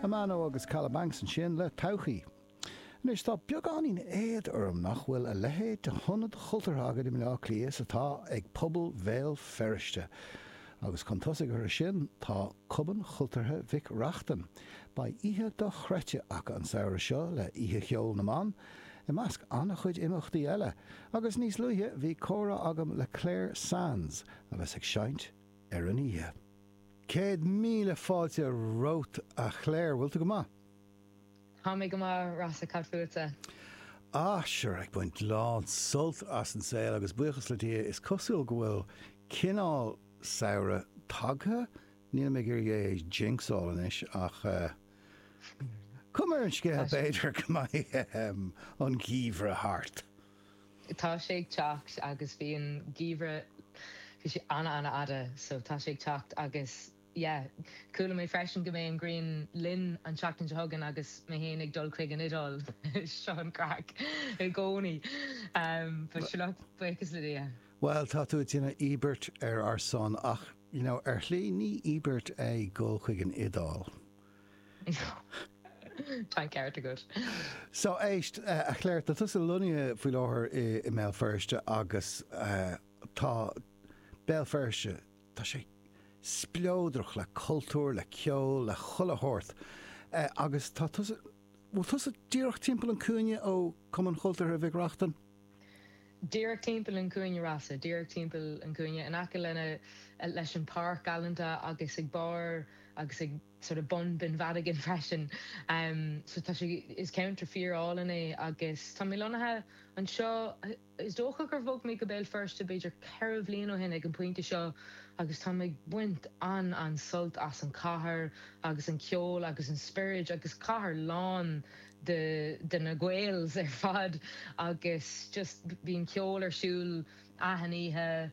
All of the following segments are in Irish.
Amano agus Kalabanx ansin le Todhchaí. Anois, tá beagáinín éad orm nach bhfuil a leithéid de hionad chultúrtha againn i mBleá Cliath is atá ag pobal Bhéal Feirste. Agus chun tosaigh orthu sin, tá Cumann Chultúrtha Mhic Reachtain. Beidh oíche dochreidte acu an samhradh seo le Oíche Cheoil na mBan, i measc an-chuid imeachtaí eile, agus níos luaithe bhí comhrá agam le Clare Sands a bheas ag seinnt ar an oíche. Céad míle fáilte romhat, a Chléir. Bhfuil tú go maith? Tá mé go maith, Rossa. Cad fútsa? Ah, sure, ag baint lán sult as an saol agus buíochas le Dia, is cosúil go bhfuil cineál samhraidh tagtha, nílim ag iarraidh é a jinxáil anois ach cuma ar an scéal, b'fhéidir go mbeidh an geimhreadh thart. Tá sé ag teacht agus bhí an geimhreadh, bhí sé ana ana fhada so tá sé ag teacht agus yeah. Chuala mé freisin go mbeidh an ghrian linn an tseachtain seo chugainn agus mé féin ag dul chuig an Iodáil, seo an craic i gcónaí but sure look, buíochas le Dia. Bhuel, tá tú a' déanamh íobairt ar ár son ach, you know, ar shlí ní íobairt é dhul chuig an Iodáil. Tá an ceart agat. So éist, a Chléir, tá tusa lonnaithe faoi láthair i mBéal Feirste agus tá Béal Feirste, tá sé spleodrach le cultúr, le ceol, le chuile shórt agus tá tusa, bhfuil tusa díreach timpeall an cúinne ó Cumann Chultúrtha Mhic Reachtain? díreach timpeall an chúinne Rossa, díreach timpeall an chúinne, in aice lena, leis an páirc galanta agus ag barr agus ag sort of bun Binn Mhadigan freisin. So tá sé, is ceantar fíor álainn é agus tá mé lonnaithe anseo, is dócha gur bhog mé go Béal Feirste b'fhéidir ceithre bhliain ó shin ag an bpointe seo agus táim ag baint an-an-sult as an chathair agus an ceol agus an spioraid agus cathair lán de na Gaels ar fad agus just bíonn ceol ar siúl achan oíche,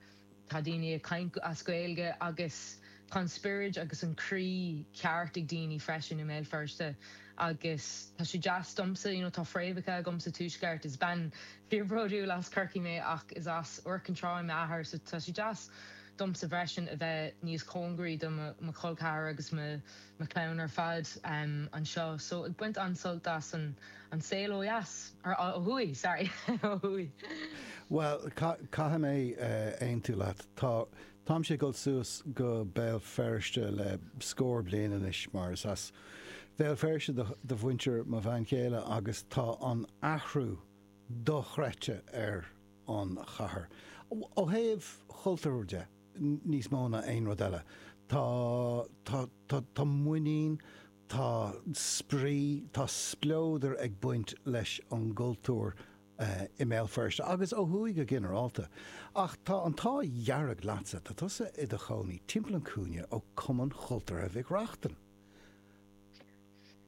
tá daoine ag caint as Gaeilge agus tá an spioraid agus an croí ceart ag daoine freisin i mBéal Feirste agus tá sé deas domsa, you know, tá fréamhacha agam sa Tuaisceart, is bean fíorbhródúil as Corcaigh mé ach is as Iúr Cinn Trá m'athair so tá sé deas domsa freisin a bheith níos cóngaraí do mo chol ceathrair agus mo na clann ar fad anseo so ag baint an-sult as an saol ó dheas, or ó thuaidh, sorry, ó thuaidh. Bhuel, caithfidh mé aontú leat. Tá, táimse ag dul suas go Béal Feirste le scór bliain anois mar is as Béal Feirste do mhuintir mo bhean chéile agus tá an athrú dochreidte ar an chathair, ó thaobh chultúir de. níos mó ná aon rud eile. Tá, tá, tá, tá muinín, tá spraoi, tá spleodar ag baint leis an gcultúr i mBéal Feirste agus ó thuaidh go ginearálta. Ach tá an t-ádh dhearg leatsa, tá tusa i do chónaí timpeall an chúinne ó Cumann Chultúrtha Mhic Reachtain.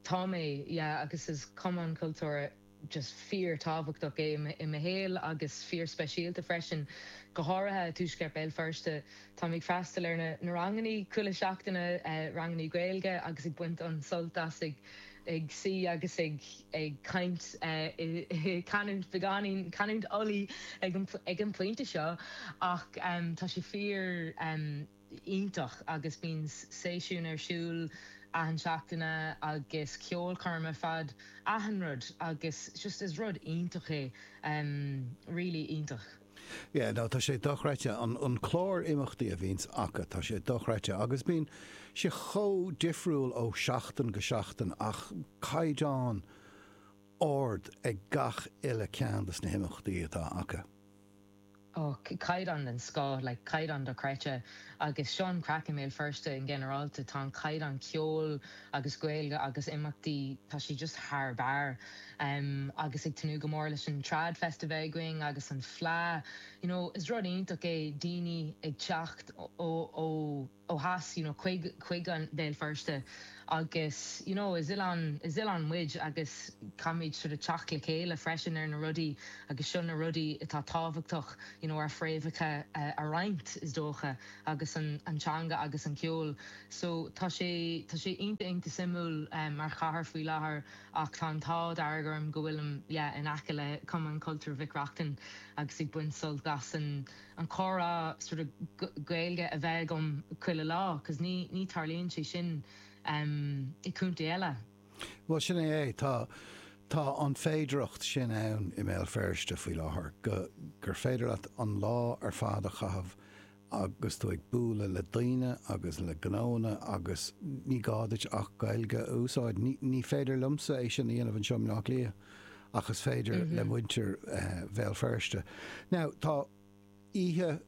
Tá mé, yeah, agus is cumann cultúrtha just fíor-tábhachtach é i mo shaol agus fíor-speisialta freisin, go háirithe i dtuaisceart Béal Feirste. Táim ag freastal ar na ranganna chuile seachtain, ranganna Gaeilge, agus ag baint an-sult as ag suí agus ag caint i canúint beagáinín, canúint Ulaidh ag an bpointe seo, ach tá sé fíor. iontach agus bíonn seisiúin ar siúl achan seachtaine agus ceolchoirmeacha fad achan rud agus just is rud iontach é really iontach. Yeah no tá sé dochreidte an clár imeachtaí a bhíonn acu tá sé dochreidte agus bíonn sé chomh difriúil ó sheachtain go seachtain ach caighdeán ard ag gach uile ceann dos na himeachtaí atá acu. Ó, caighdeán den scoth, like, caighdeán dochreidte. Agus seo an craic i mBéal Feirste i nginearálta, tá an caighdeán ceoil agus Gaeilge agus imeachtaí, tá sé just thar barr. Agus ag tnúth go mór leis an Trad Festival againn agus an Fleadh, you know, is rud iontach é daoine ag teacht ó, ó, ó theas, you know, chuig chuig Béal Feirste agus, you know, is oileán, is oileán muid agus caithfimid sort of teacht le chéile freisin ar na rudaí agus seo na rudaí atá tábhachtach, you know, ár bhfréamhacha a roinnt, is dócha, agus an an teanga agus an ceol. So, tá sé, tá sé iontach, iontach suimiúil mar chathair faoi láthair ach tá an t-ádh dearg orm go bhfuilim, yeah, in aice le Cumann Cultúir Mhic Reachtain agus ag baint sult as an, an comhrá sort of Gaeilge a bheith agam chuile lá cos ní ní tarlaíonn sé sin ehm i contae eile. Bhuel sin é é, tá tá an féidireacht sin ann i mBéal Feirste faoi láthair go gur féidir leat an lá ar fad a chaitheamh agus tú ag bualadh le daoine agus le gnóanna agus ní gá duit ach Gaeilge a úsáid. Ní ní féidir liomsa é sin a dhéanamh anseo i mBleá Cliath. ach is féidir le muintir Bhéal Feirste. Now, tá oíche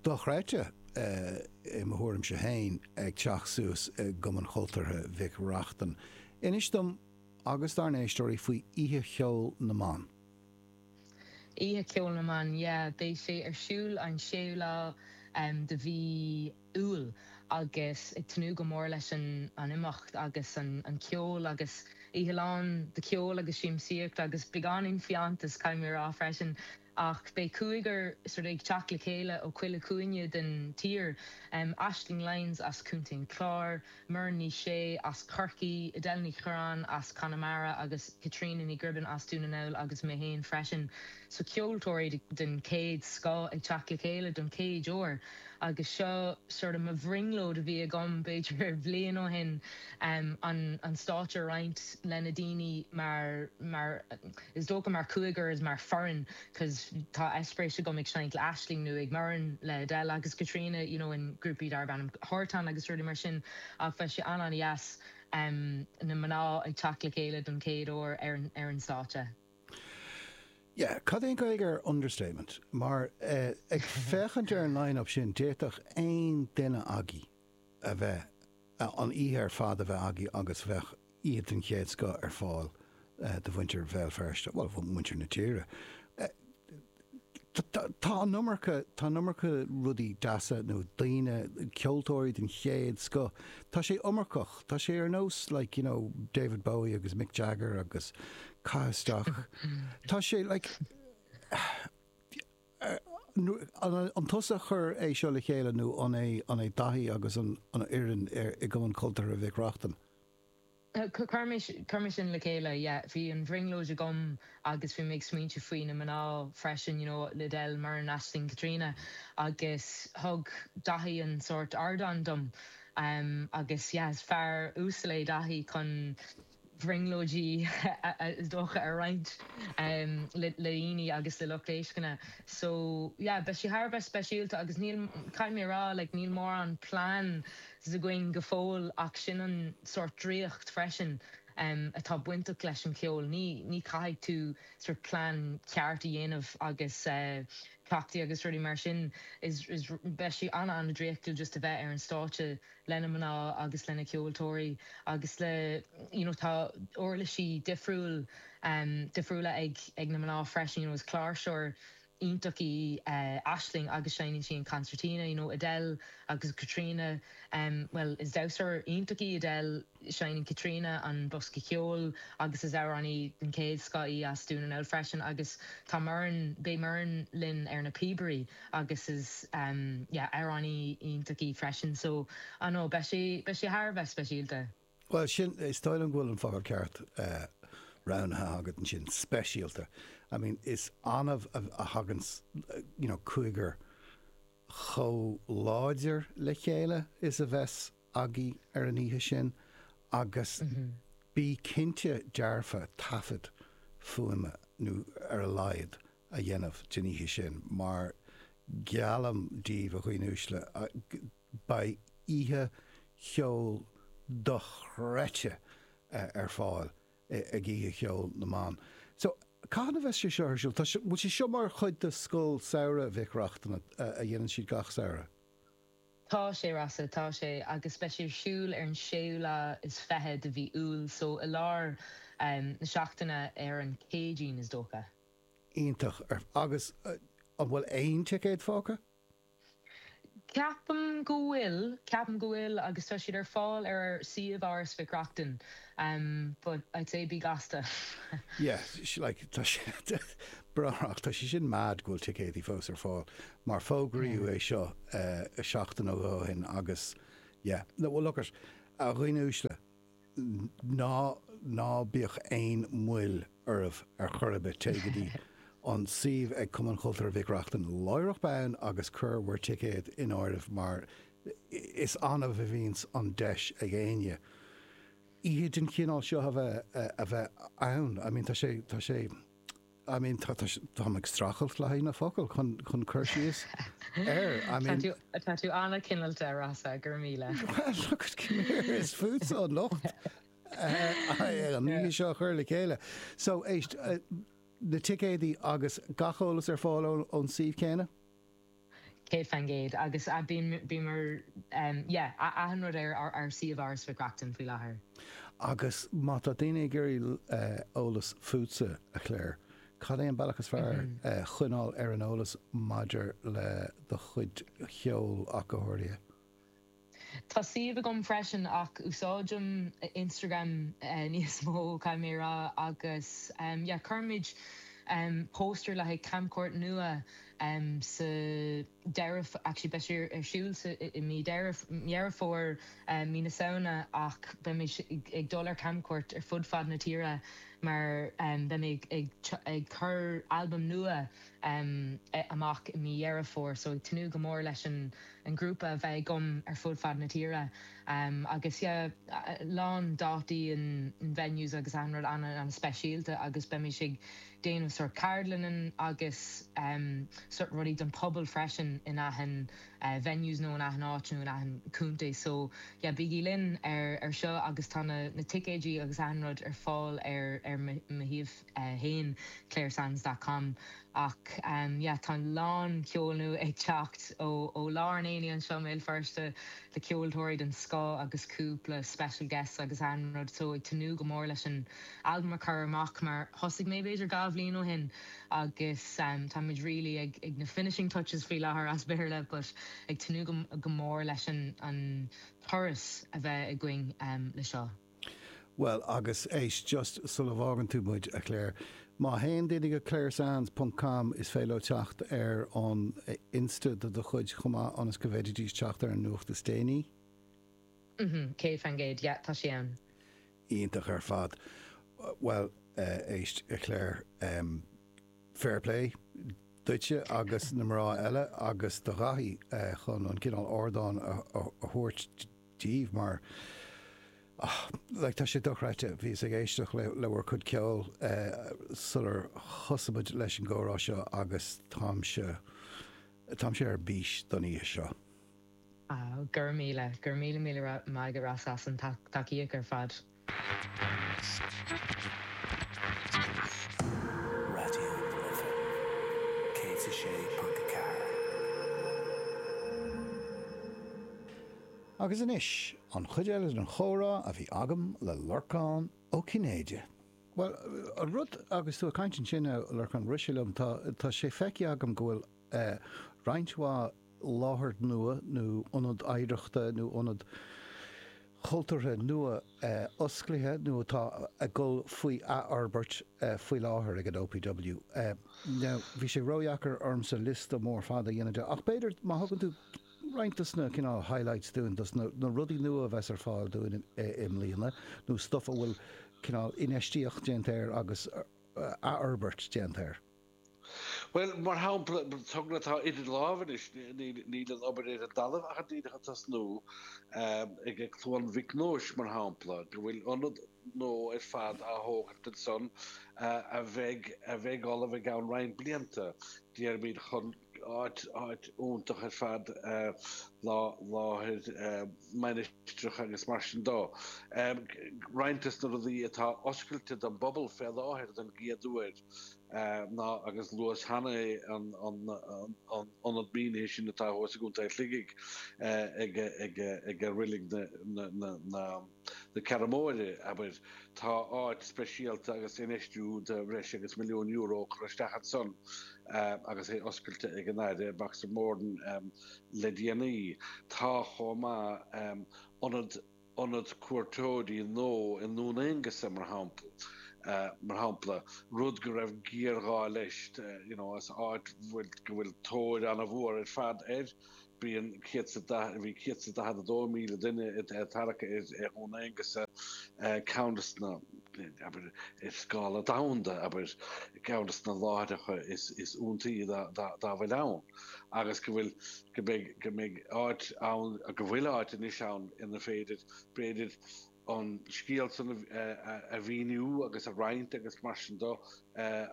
dochreidte, i mo thuairimse féin, ag teacht suas i gCumann Chultúrtha Mhic Reachtain. Inis dom agus dár n-éisteoirí faoi Oíche Cheoil na mBan. Oíche Cheoil na mBan, yeah. Beidh sé ar siúl an séú lá de mhí. iúl agus ag tnúth go mór leis an imeacht agus an ceol agus oíche lán de ceol agus siamsaíocht agus beagáinín fiántais, caithfidh mé a rá freisin. Ach beidh cúigear ag teacht le chéile ó chuile chúinne den tír, Aisling Lyons as Contae an Chláir, Muireann Ní Shé as Corcaigh, Edel Ní Chuireáin as Conamara agus Caitríona Ní Ghribin as Dún na nGall agus mé féin freisin. So ceoltóirí den chéad scoth ag teacht le chéile don chéad uair agus seo sort of mo bhrionglóid a bhí agam b'fhéidir bhliain ó shin an stáitse a roinnt le na daoine mar is dócha mar chúigear mar foireann. cos tá eispéiris agam ag seinnt le Aisling nó ag Muireann le Edel agus Caitríona you know in grúpaí darb ainm Thartan agus rudaí mar sin ach beidh sé an-an-dheas em na mná ag teacht le chéile don chéad uair ar an ar an stáitse. Yeah, cad é an Gaeilge ar understatement? Mar eh ag féachaint ar an line-up sin d'fhéadfadh aon duine agaibh. a bheith, an oíche ar fad a bheith agaibh agus bheadh oíche den chéad scoth ar fáil do mhuintir Bhéal Feirste, bhuel, mhuintir na tíre. Tá an iomarca, tá an iomarca rudaí deasa nó daoine, ceoltóirí den chéad scoth, tá sé iomarcach, tá sé ar nós like, you know, David Bowie agus Mick Jagger agus caith isteach, tá sé like. An tusa a chuir seo le chéile nó an é Daithí agus an fhoireann i gCumann Cultúrtha Mhic Reachtain? Chuir mise sin le chéile, yeah. Bhí an bhrionglóid agam agus bhí mé ag smaointiú faoi na mná freisin, you know, Edel, Muireann, Aisling, Caitríona agus thug Daithí an sórt ardán dom agus yeah, is fear uasal é Daithí chun, bhrionglóidí is dócha a roinnt le daoine agus le lucht éisteachta so yeah beidh sé thar a bheith speisialta agus níl, caithfidh mé a rá like níl mórán plans againn go fóill ach sin an sórt draíocht freisin atá bainteach leis an cheol, ní ní caithfidh tú sórt plean ceart a dhéanamh agus cleachtaí agus rudaí mar sin is is beidh sé ana ana draíochtúil just a bheith ar an stáitse lena mná agus lena cheoltóirí agus le you know tá uirlisí difriúil difriúla ag ag na mná freisin, you know is cláirseoir iontach í Aisling agus seinneann sí an concertina, you know Edel agus Caitríona, well is damhsóir iontach í Edel, Seinneann Caitríona an bosca ceoil agus is amhránaí den chéad scoth í as Dún na nGall freisin agus tá Muireann, beidh Muireann linn ar na píobaí agus is yeah, amhránaí iontach í freisin so I don't know, beidh sé, beidh sé thar a bheith speisialta. Bhuel, sin, is dóigh liom go bhfuil an focal ceart roghnaithe agat ansin, speisialta. I mean, is annamh a thagann you know cúigear chomh láidir le chéile is a bheas, agaibh ar an oíche sin agus bí cinnte dearfa taifead fuaime, nó ar a laghad, a dhéanamh den oíche sin mar geallaim daoibh, a dhaoine uaisle, beidh oíche cheoil dochreidte ar fáil ag Oíche Cheoil na mBan. So, cathain a bheas sé seo ar siúl? Tá sé, bhfuil sé seo mar chuid de Scoil Samhraidh Mhic Reachtain a dhéanann siad gach samhradh? Tá sé, Rossa, tá sé. Agus beidh sé ar siúl ar an séú lá is fiche de mhí Iúil, so i lár na seachtaine, ar an Céadaoin, is dócha. Iontach. Agus an bhfuil aon ticéad fágtha? Ceapaim go bhfuil, ceapaim go bhfuil agus tá siad ar fáil ar suíomh Áras Mhic Reachtain but I'd say bí gasta. Yeah, like tá sé bagrach, tá sé sin mad go bhfuil ticéadaí fós ar fáil mar fógraíodh é seo seachtain nó dhó ó shin agus yeah, no, well look it, a dhaoine uaisle, ná, ná bíodh aon mhoill oraibh ar chor ar bith, téigh go dtí an suíomh ag Cumann Cultúrtha Mhic Reachtain láithreach bonn agus cuir bhur ticéad in áirithe mar is annamh a bhíonns an deis ag éinne oíche den chineál seo a bheith, a bheith ann, I mean tá sé, tá sé. I mean, tá, tá, táim ag streachailt le haghaidh na focail chun, chun cur síos air, I mean. Tá tú, tá tú an-chineálta, a Rossa, go raibh míle. Well, look it, come here, is fútsa an locht uh, an oíche seo a chur le chéile. So, éist, uh, na ticéadaí agus gach eolas ar fáil ón suíomh céanna? Céad faoin gcéad. Agus bíomar, yeah, achan rud ar ár suíomh Áras Mhic Reachtain faoi láthair. Agus má tá daoine ag iarraidh eolas fútsa, a Clare, cad é an bealach is fearr choinneáil ar an eolas maidir le do chuid ceoil ach go háirithe? Tá suíomh agam freisin ach úsáidim Instagram níos mó, caithfidh mé a rá, agus yeah cuirfimid póstaer le haghaidh camchuairt nua sa deireadh, actually beidh sé ar siúl i mí Dheireadh, Dheireadh Fómhair, mí na Samhna ach beimid ag dul ar camchuairt ar fud fad na tíre mar beidh mé ag ag cur albam nua, em. eh. amach i mí Dheireadh Fómhair so ag tnúth go mór leis an an grúpa a bheith agam ar fud fad na tíre em. agus yeah lán dátaí in in venues agus achan rud ana ana speisialta agus beidh muid ag déanamh sort ceardlannan agus em. sort rudaí don pobal freisin in achan eh. venues nó in achan áit nó in achan contae so yeah bígí linn ar ar seo agus tá na na ticéidí agus achan rud ar fáil ar ar mo mo shuíomh. claresands dot com Ach yeah tá a lán ceoil nua ag teacht ó lár an aonaigh anseo i mBéal Feirste le ceoltóirí den scoth agus cúpla special guests agus achan rud so ag tnúth go mór leis an albam a chur amach mar thosaigh mé b'fhéidir dhá bhliain ó shin agus tá muid really ag na finishing touches faoi láthair as Béarla but ag tnúth go mór leis an turas a bheith againn le seo. Bhuel, agus éist, just sula bhfágann tú muid, a Clare, má théann daoine chuig ClareSands ponc com is féidir leo teacht ar an Insta de do chuid chomh maith ionas go bhféididís teacht ar an nuacht is déanaí. Umhm, céad fan gcéad, yeah, tá sí ann. Iontach ar fad. Bhuel, eh, éist, a Clare, em, fair play duitse agus na mná eile agus do Dhaithí, eh, chun an cineál ardáin a, a, a thabhairt díobh mar, ah, like, tá sé dochreidte, bhíos ag éisteacht le, le bhur cuid ceoil eh sular thosaigh muid leis an gcomhrá seo agus táimse, táimse ar bís don oíche seo. Ah, go raibh míle, go raibh míle míle maith agat Ross as an tacaíocht ar fad. Raidió na Life 106.4. Agus anois, an chuid eile den chomhrá a bhí agam le Lorcán Ó Cinnéide. Bhuel, an rud, agus tú ag caint ansin, a Lorcán, rith sé liom, tá sé feicthe agam go bhfuil, roinnt mhaith láthair nua nó ionad oidhreachta nó ionad cultúrtha nua osclaithe nó atá ag dul faoi athfhorbairt faoi láthair ag an OPW. Now, bhí sé ródheacair ormsa liosta mór fada a dhéanamh de ach b'fhéidir má thugann tú roinnt des na cineál highlights dúinn, des na rudaí nua a bheas ar fáil dúinn i mbliana nó stuff a bhfuil cineál infheistíocht déanta air agus athfhorbairt déanta air. Bhuel, mar shampla, togra atá idir lámha anois, níl an obair ar an dtalamh ach díreach ag tosnú, ag Cluain Mhic Nóis, mar shampla, go bhfuil ionad nua ar fad á thógaint ansan a bheidh ullamh i gceann roinnt blianta, déarfaimid, chun. áit iontach ar fad, láthair mainistreach agus mar sin de. Roinnt des na rudaí atá oscailte don bpobal fé láthair don gcéad uair ná, agus luas cheana é, an tIonad Mínithe sin atá thuas i gContae Shligigh ag Reilig na. Na Ceathrún Móire, abair. Tá áit speisialta agus infheistiú de bhreis agus milliún euro curtha isteach ansan agus é oscailte ag an Aire, Boxer Moran, le déanaí. Tá chomh maith ionad ionad cuairteoirí nua i nDún Aonghasa, mar shampla, mar shampla, rud go raibh géarghá leis, you know, as áit bhfuil go bhfuil tóir an-mhór ar fad air. Bíonn 140, bhí 142,000 duine ag tarrac ar Dhún Aonghasa, abair, ceann des na, abair, ar scála domhanda, abair, ceann des na láithreacha is iontaí dá bhfuil ann, agus go bhfuil, go mbeidh, go mbeidh áit ann, go bhfuil áit anois ann inar féidir, b'fhéidir, an scéal san a mhíniú agus a roinnt agus mar sin de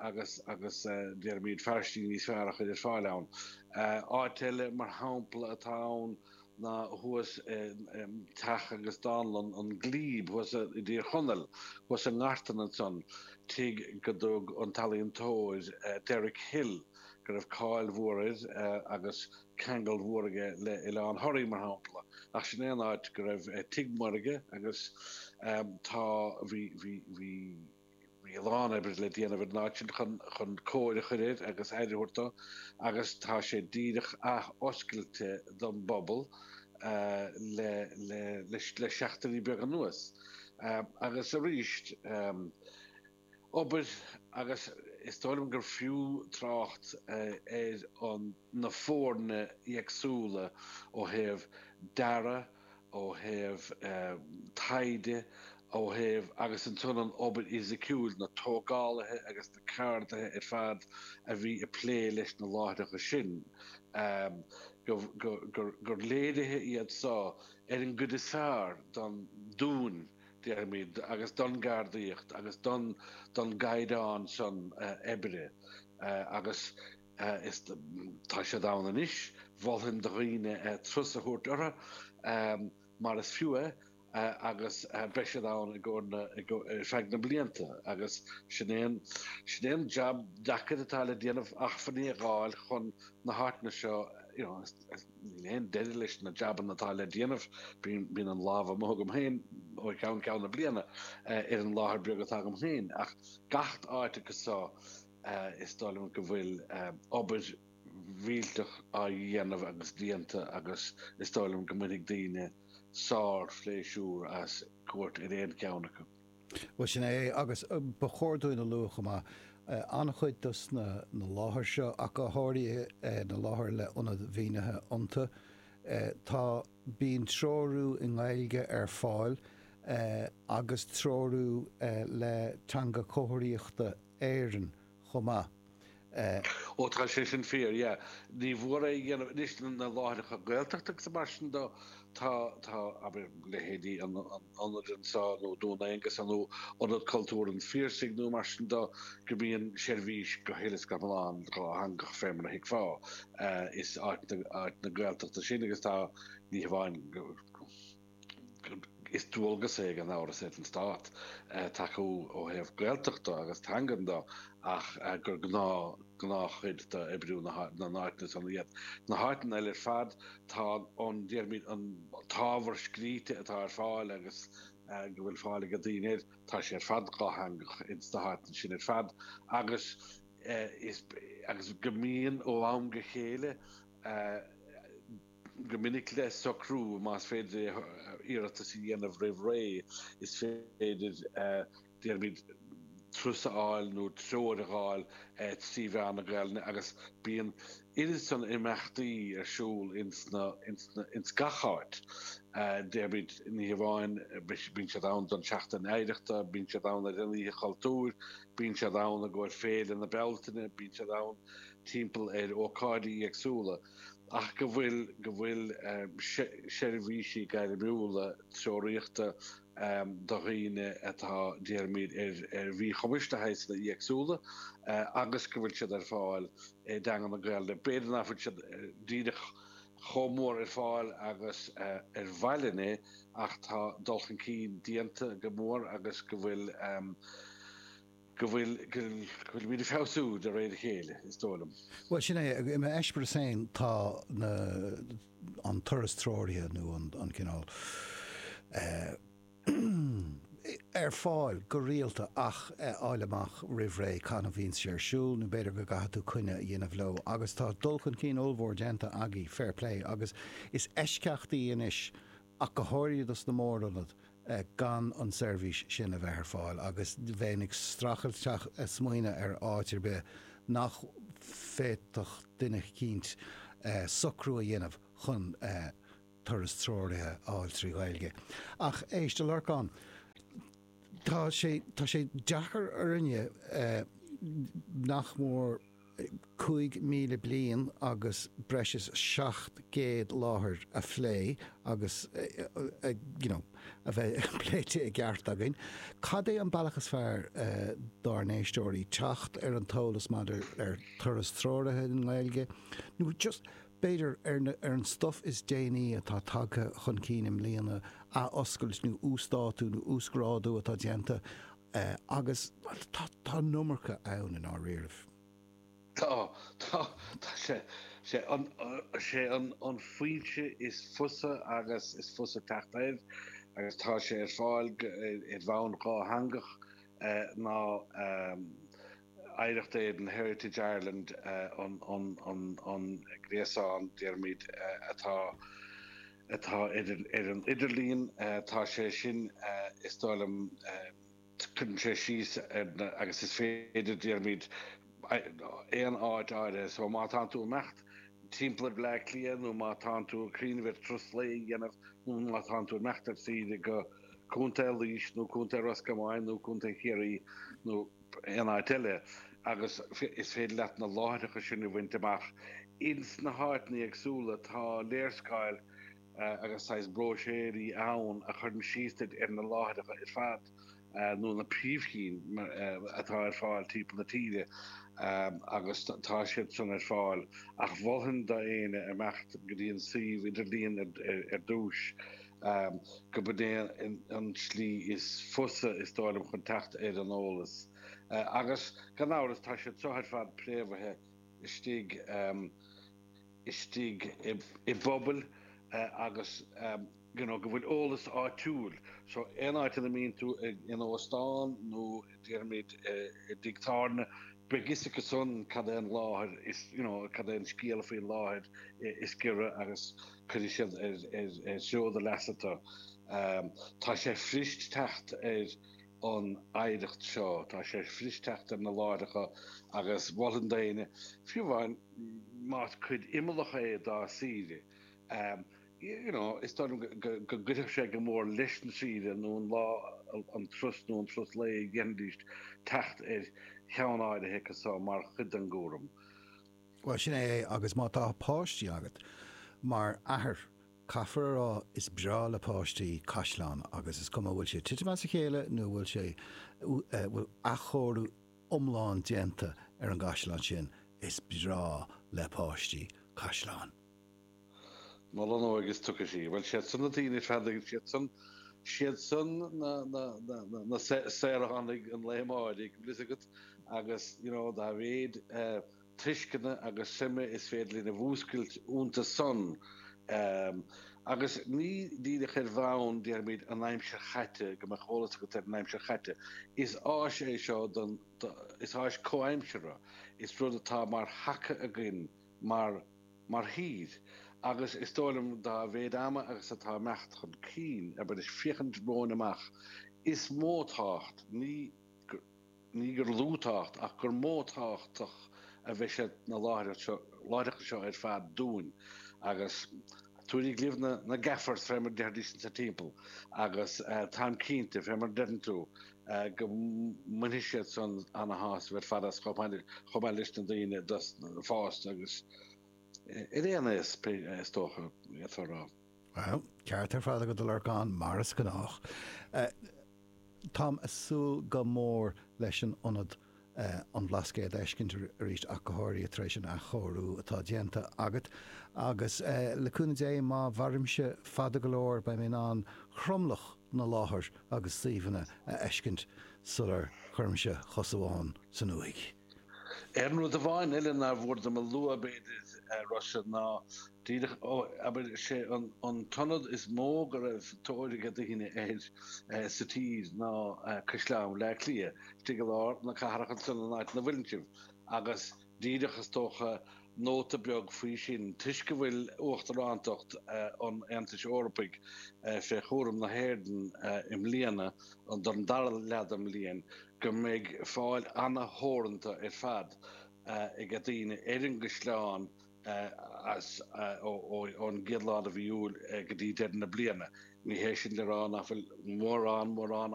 agus agus déarfaimid fearaistí níos fearr a chuir ar fáil ann. Áit eile mar shampla atá ann ná thuas i dteach agus dánlann an Glebe thuas i dTír Chonaill, thuas i nGartan ansan, tigh go dtug an t-ealaíontóir Derek Hill, go raibh cáil mhór air agus. ceangal mhór aige le Oileán Thoraí, mar shampla, ach sin é an áit go raibh tigh maorga agus tá, bhí, bhí, bhí, bhí a lán oibre le déanamh ar an áit sin chun, chun cóir a chuir air agus aire a thabhairt dó agus tá sé díreach ath-oscailte don bpobal le, le, le, le seachtainí beaga anuas agus arís, obair agus is dóigh liom gur fiú trácht ar an na foirne éagsúla ó thaobh dearadh, ó thaobh taighde, ó thaobh agus ansan an obair fhisiciúil, na tógálaithe agus na ceardaithe ar fad a bhí ag plé leis na láithreacha sin, gur léiriú iad seo ar an gcuid is fearr den dúchas déarfaimid, agus don gceardaíocht agus don don gcaighdeán san oibre agus is tá siad ann anois, mholfainn do dhaoine turas a thabhairt orthu mar is fiú é agus beidh siad ann i gcomhair na ar feadh na mblianta agus sin é an sin é an jab deacair atá le déanamh acmhainní a dh'fháil chun na háiteanna seo you know, Níl aon deireadh leis na jabanna atá le déanamh. Bíonn an lámh amuigh agam féin, ó cheann ceann na bliana, ar an láthair bheag atá agam féin, ach gach áit acu san, is dóigh liom go bhfuil obair mhillteach á dhéanamh agus déanta agus is dóigh liom go mbainfidh daoine sár-phléisiúr as cuairt ar aon cheann acu. Bhuel, sin é é. Agus ba chóir dúinn a lua chomh maith, an-chuid de na láthair seo, ach go háirithe na láthair le hionad mínithe iontu, tá, bíonn treorú i nGaeilge ar fáil agus treorú le Teanga Chomharthaíochta Éireann, chomh maith, eh. Ó tá sé sin fíor, yeah. Ní mór a rá anois na láithreacha Gaeltachta agus mar sin dó, tá, tá, abair leithéidí an ionaid anseo nó Dún Aonghasa nó Ionad Cultúir an Phiarsaigh nó mar sin de, go mbíonn seirbhís go huile is go hiomlán dátheangach fé mar a thuigfeá, eh, is áiteanna, áiteanna Gaeltachta san agus tá, ní hamháin go. gur dualgas é gan amhras ar an Stát tacú ó thaobh Gaeltachta agus teangan de ach gur gnáth, gnáthchuid d'oibriú na n-áiteanna san iad. Sna háiteanna eile ar fad tá an, déarfaimid, an t-ábhar scríte atá ar fáil agus go bhfuil fáil ag daoine air, tá sé ar fad dátheangach ins na háiteanna sin ar fad agus is, agus go mbíonn ó am go chéile, go minic le socrú más féidir é, iarratas a dhéanamh roimh ré, is féidir, déarfaimid, turas a fháil nó treoir a dh'fháil trí mheán na Gaelainne agus bíonn oiread san imeachtaí ar siúl ins gach áit, déarfaimid, ní hamháin, bíonn siad ann don tSeachtain Oidhreachta, bíonn siad ann ar an Oíche Chultúir, bíonn siad ann i gcomhair Féile na Bealtaine, bíonn siad ann timpeall ar ócáidí éagsúla. ach go bhfuil go bhfuil seirbhísí gairmiúla treoraíochta do dhaoine atá, déarfaimid, ar mhíchumas de shaghsanna éagsúla agus go bhfuil siad ar fáil i dteanga na Gaolainne. B'fhéidir nach bhfuil siad díreach chomh mór ar fáil agus ba mhaith linn é ach tá dul chun cinn déanta go mór agus go bhfuil, go bhfuil, go bhfuil muid ag feabhsú de réir a chéile, is dóigh liom. Bhuel, sin é. I m'eispéireas féin, tá na, an turas treoraithe nó an, an t-eolaí ar fáil go rialta ach a fháil amach roimh ré cathain a bhíonn sé ar siúl nó b'fhéidir go gcaithfidh tú coinne a dhéanamh leo agus tá dul chun cinn ollmhór déanta agaibh, fair play, agus is eisceachtaí anois, ach go háirithe do na mór-ionaid, gan an tseirbhís sin a bheith ar fáil agus bheinn ag streachailt ag smaoineamh ar áit ar bith nach bhféadfadh duine eicínt socrú a dhéanamh chun turas treoraithe a fháil trí Ghaeilge. Ach éist, a Lorcáin, tá sé deacair orainne nach mór, cúig míle bliain agus breis is seacht gcéad láthair a phlé agus you know a bheith pléite i gceart againn, cad é an bealach is fearr dár n-éisteoirí teacht ar an t-eolas maidir le turas treoraithe i nGaeilge, nó just b'fhéidir ar na, ar an stuff is déanaí atá tagtha chun cinn i mbliana, athoscailt nó uasdátú nó uasghrádú atá déanta? é agus tá an iomarca ann i ndáiríribh. Tá, tá, tá sé, sé an, sé an an fhoinse is fusa agus is fusa teacht air agus tá sé ar fáil go, i bhfoirm dhátheangach ná Oidhreacht Éireann, Heritage Ireland an, an, an, an gréasán, déarfaimid, atá. atá ar an idirlíon, tá sé sin, is dóigh liom, cuireann sé síos ar na, agus is féidir, déarfaimid, aon áit áirithe, so má tánn tú ag imeacht timpeall Bhleá Cliath nó má tánn tú ag cuimhneamh ar turas lae a dhéanamh nó má tánn tú ag imeacht ar saoire go Contae Laoise nó Contae Ros Comáin nó Contae Chiarraí nó aon áit eile agus is féidir leat na láithreacha sin a bhaint amach ins na háiteanna éagsúla. Tá léarscáil agus saghas bróisiúirí ann a chuireann síos duit ar na láithreacha ar fad nó na príomhchinn atá ar fáil timpeall na tíre agus tá siad san ar fáil ach mholfainn d'éinne imeacht go dtí an suíomh idirlíon ar dtús. gurb in é an tslí is fusa, is dóigh liom, chun teacht ar an eolas. Agus, gan amhras, tá siad seo ar fad préamhaithe istigh istigh i bpobail agus you know go bhfuil eolas áitiúil. So aon áit ina mbíonn tú in óstán nó déarfaimid i dtigh tábhairne, beidh fhios acu san cad é an láthair is you know cad é an scéal faoin láthair is giorra agus, Cuirfidh siad ar threo do leasa tú. Tá sé fuirist teacht ar an oidhreacht seo. Tá sé fuirist teacht ar na láithreacha agus mholfainn d'aoinne, fiú amháin más cuid imeallach é dá saoire, you know, is dóigh liom go gcuirfeadh sé go mór leis an saoire nó an lá, an turas nó an turas lae a dhéanfaidís teacht ar cheann áirithe acu so mar chuid den gcúram. Bhuel, sin é é agus má tá páistí agat, mar athair, caithfear a rá, is breá le páistí caisleáin agus is cuma an bhfuil sé ag titim as a chéile nó bhfuil sé, bhfuil athchóiriú iomlán déanta ar an gcaisleán sin, is breá le páistí caisleáin. Mo leithéid is tusa sí. Bhuel, siad san na daoine fásta againn, siad san, siad san na, na, na, na, na saoránaigh an lae amáirigh, an bhfuil fhios agat, agus, you know, dá mhéid tuisceana agus suime is féidir linn a mhúscailt ionta san, ehm, agus ní díreach ar bhonn, déarfaimid, an aimsir chaite, go mbeadh eolas agat ar an aimsir chaite, is áis é seo don, do, is áis comhaimseartha, is rud atá mar thaca againn, mar mar thír agus is dóigh liom dá mhéid ama agus atá ag imeacht chun cinn abair is féachaint romhainn amach is mó tábhacht, ní go ní gur lú tábhacht, ach gur mó tábhachtach a bheidh sna láithreacht seo láithreachtaí seo ar fad dúinn agus tá tú ag lua na na gaffers fé mar a déarfaidís insa timpeall agus táim cinnte fé mar a deireann tú go mbainfidh siad san ana-shásamh ar fad as chomh maith leis na daoine fásta agus d'aon aois, is dócha, d'fhéadfá a rá. Bhuel, ceart ar fad agat, a Lorcáin, mar is gnách. Táim ag súil go mór leis an ionad an Bhlascaoid a fheiscint arís ach go háirithe tar éis an athchóiriú atá déanta agat agus le cúnamh Dé má mhairimse fada go leor beidh mé in ann tromlach na láithreacha agus suíomhanna a fheiscint sular gcuirimse cos amháin san uaigh. Aon rud amháin eile nár mhór dom a lua b'fhéidir, a Rossa, ná díreach, abair, is é an t-ionad is mó go raibh tóir ag daoine air sa tír ná Caisleán Bhleá Cliath. Istigh i lár na cathrach ansan san áit ina bhfuileann sibh agus díreach, is dócha, nóta beag faoi sin toisc go bhfuil uachtaránacht an Aontais Eorpaigh fé chúram na hÉireann i mbliana, don dara leath den bhliain, go mbeidh fáil ana-theoranta ar fad ag daoine ar an gcaisleán as ón gcéad lá de mhí Iúil go dtí deireadh na bliana. Ní hé sin le rá nach bhfuil mórán, mórán